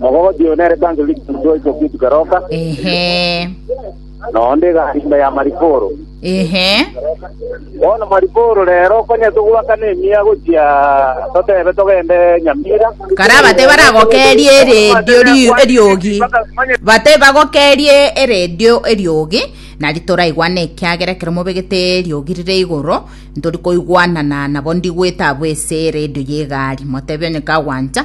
Mogogocha oyo nere Bank League Mutwoi Kokitu Keroka, Ehe. na onde egari ime ya Mariporo. Ehe. Bono Mariporo rero konya togwakana emiya gochia totebe togende Nyamira. Karaa bate baragokerie eredio ri- eriogi bate bagokerie eredio eriogi nari toraigwane ekiagera ekero mobegete eriogi rire igoro ntori koigwanana nabo ndigwete abwo ase eredio ya egari motebia onye kagwancha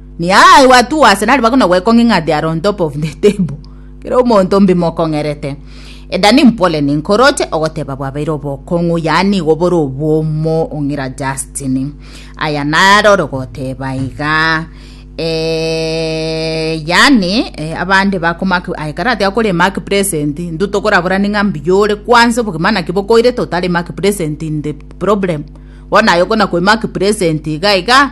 Ni aa I wa two arsenal bakona gwekong'e ng'a they are on top of the table kera omonto mbimokong'erete Edani mpore ninkoroche ogoteba bwabeire obokong'u yaani igo bore obwomo ong'ira Justin aya narore goteba iga eh, yaani eh, abande bakomak aye kare atiga kore mark present ndu tokoraborani ng'a mbuya ore kwanza obogima naki bokoirete otari mark present in the problem bono aye okona kwe mark present iga iga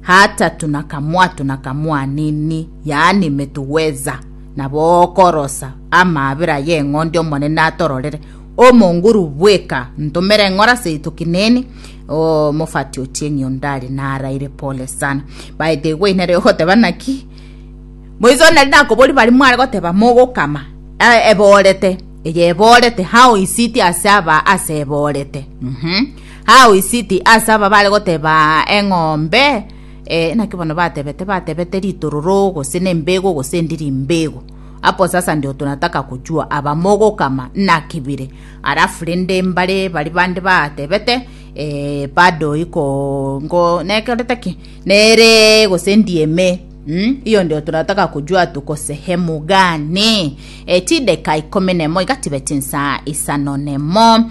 hatatu na kamwato na kamwanini, yaani metuweza, na bokorosa amaabera y'eng'ondi omonene atororere, omonguru bweka ntomere eng'ora seito kineni, o mofati otieng'i ondare naraire pole sana. Baete igwe inere ogoteba naki, moiso nari nakobori bari mware goteba mogokama eborete eye eborete how is it ase aba ase eborete mm -hmm. How is it ase aba bare goteba eng'ombe eh, naki bono batebete batebete ritororo gose nembego gose endi rimbego apo sasa ndio tunataka kujua aba mogokama naki bire alafu rende mbare bari bande batebete eh, bado iko ngo nekerete ki nere gose ndieme Mm, hiyo ndio tunataka kujua tuko sehemu gani e, chideka ikumi nemo iga tibe chinsa isano nemo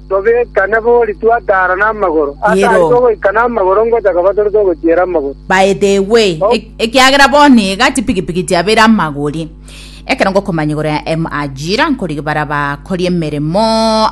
Tobeka nabori twataara namagoro. Ase Yero. ayio togoika namagoro ngocha koba tore togochiera amagoro. By the way, Oh. e- ekiagera bono iga chipikipiki chiabeire amagori ekero ngokomanya igoro ya M ajira nkorigia bara bakori emeremo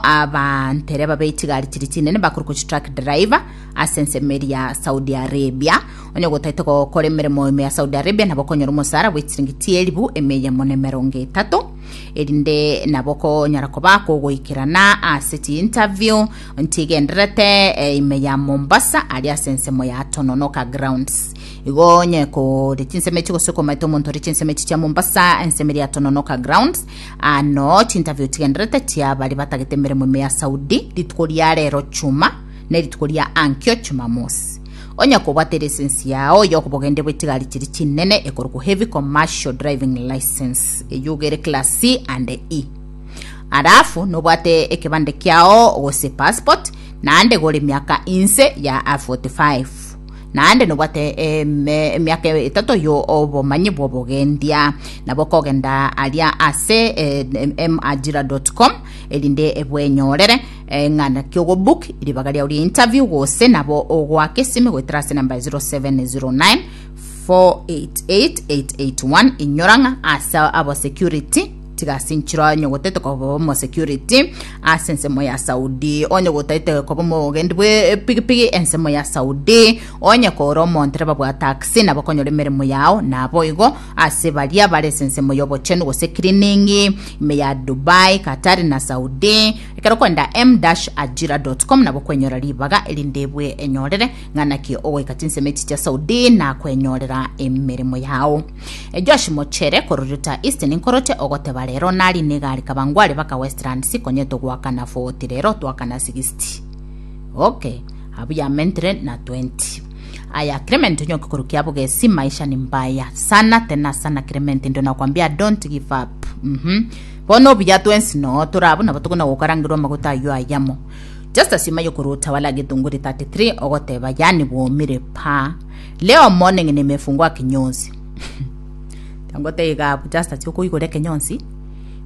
abantere babe chigari chiri chinene bakore kochi truck driver ase ensemo eri ya Saudi Arabia onye gotaete gokora emeremo ime ya Saudi Arabia nabo okonyora omosara bwe chiringi chielibu eme eyemo na emerongo etato erinde nabo konyara koba kogoikerana ase chiinterview nchigenderete eh, ime ya mombasa ari ase ensemo ya tononoka grounds igo onye kore chinsemo echi gose komaete omonto ore chinsemo echi chia mombasa ensemo ria tononoka grounds ano chiinterview chigenderete chia bari batagete emeremo ime ya saudi rituko ria rero chuma ne rituko ria ankio chumamosi Onye kobwate license yao yokobogendi bwechigari chiri chinene ekorokwa heavy commercial driving license eyio ogere class C and E. Alafu nobwate ekebande kiao gose passport naende gore miaka inse ya 45 naende nobwate emiaka etato yo obomanyi bwobogendia nabo kogenda aria ase emarjira.com erinde ebwenyorere Ng'ana ki ogobook ribaga riao ria interview gose nabo ogoaka esimi goetera ase namba 0709 488881 inyora ng'a ase abo security tiga ase enchiro onyogotaete koba omo security ase ensemo ya saudi onyogotaete koba omogendi bwe pigipigi ensemo ya saudi onye kora omontereba bwa taxi nabo konyora emeremo yao nabo igo ase baria bare ase ensemo ya obochenu gose cleaning ime ya dubai katari na saudi Ekero okoenda m-ajira dot com nabo okwenyora ribaga erinde bwe enyorere ng'a naki ogoika chinsemo echi chia Saudi na kwenyorera emeremo yao. Josh Mochere korwa Utah East ninkoroche ogoteba rero nari negari Kawangware baka Westlands ikonyetwe goakana 40 rero twakana 60. Ok abuya mentre na 20. Aya Clement onyoke korwa Kiabugesi maisha ni mbaya sana tena sana Clement ndio nakwambia don't give up. Mhm. Bono obuya twensi noo tore abwo nabo tokona gokarangerwa amaguta ayio ayamo. Just asima yokorwa Utawala getunguri 33 ogoteba yaani bwomire paa. Leo morning nimefungua kinyonsi. Tangote iga abu just ati okoigora ekenyonsi.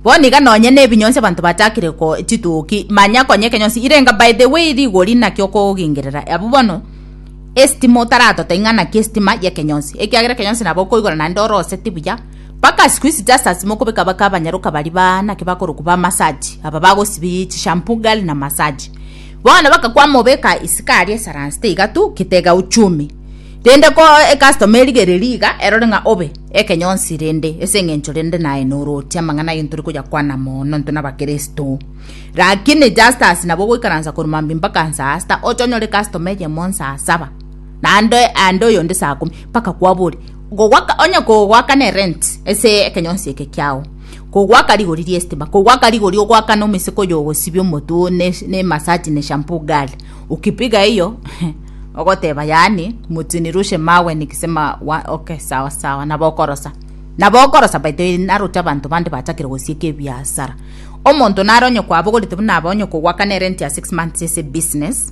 Bono iga nonye ne ebinyonsi abanto batakire ko chituki manya konya ekenyonsi irenga by the way rigori naki okogingerera abu bono estima otaratote ing'ana ki estima yekenyonsi ekiagera ekenyonsi nabo okoigora naende oroseti buya Bagachikwa esitaasi asemo kobeka baka abanyaroka baria ba naki bakorokwa ba masaji, aba bagosibia chishampoo ngali na masaji. Bono bakakwama obeka isiko aria esaransi teiga tu, kitega uchumi. Rende ko ecustom erigereria iga, erore ng'a obe ekenyonsi rende, ase eng'encho rende naye noroche amang'ana ayio ntore koyakwana mono intwe nabakeresto. Rakini Justus nabo ogoikaransa korwa mambia mpaka nsaa sita, ocha onyore ecustom eyemo nsaa saba, naende aende oyonde saa komi, bakakwabori Kogoaka onye kogoaka ne rent ase ekenyonsi eke kiao, kogoaka rigori ri'estima, kogoaka rigori ogoaka na omeseke oyo ogosibia omotwe oo ne ne massage ne shampoo girl, ukipiga hiyo ogoteba yaani mtu nirushe mawe nikisema wa okay sawa sawa nabo okorosa nabo okorosa by the way naroche abanto bande bachakire gosieka ebiasara. Omonto nare onye kwabogorete buna aba onye kogoaka ne rent ya six months ase ebusiness,